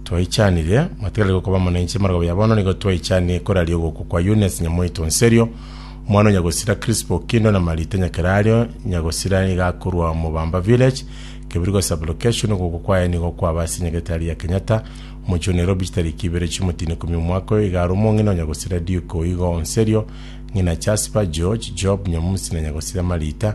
Twaichanire, matigarire gokoba amo nainche ime rogobe ya bono, nigo twaichanie koraria ogokwa kwa Eunice nyamoito Nserio, omwana o nyagosira Crispo Okindo na Marita Nyakerario, nyagosira nigo akorwa Mobamba Village, Kebirigo Sub-location, ogokwa kwaye nigo kwaba ase Nyagetari ya Kenyatta, omochie o Nairobi chitariki ibere chi'omotino ikomi omwaka oyo, igaro omong'ina o nyagosira Duke Oigo Nserio, ng'ina Jasper, George, Job, Nyamusi na nyagosira Marita,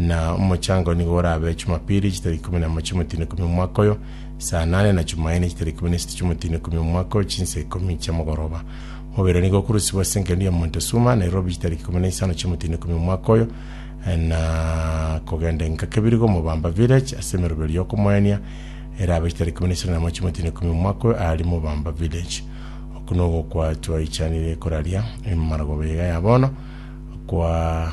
Na omochango nigo orabe Chumapili chitaria ikomi namo chi'omotino ikomi omwaka oyo, saa nane, na Chumaine chitaria ikomi na isatu chi'omotino ikomi omwaka oyo, chinsa ikomi chi'amagoroba. Mobere nigo okurusigwa ase engencho y'omonto esuma, Nairobi chitaria ikomi na isano chi'omotino ikomi omwaka oyo, na kogenda enka kebiri g'omobamba Village ase emeroberio y'okomoenia erabe chitaria ikomi na isano namo chi'omotino ikomi omwaka oyo aari mobamba Village. Oku nogokwa twaichanire koraria emaragoba iga ya bono, kwa.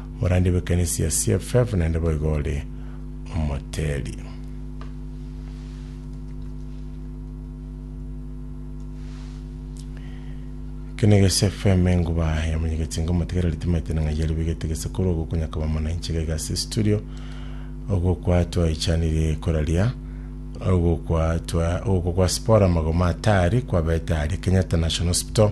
Omorandia bw'ekanisa ya CFF naende boigo ore omoteli. Kene gese FM enguba ya munyegetsinga omotegereri timaite na ng'aiyari bigete gese kuru ogo konyakaba mana inchega igase studio ogo kwa twaichanire koraria ogo kwa twa ogo kwa spora magoma atari kwa beta ari Kenyatta National Hospital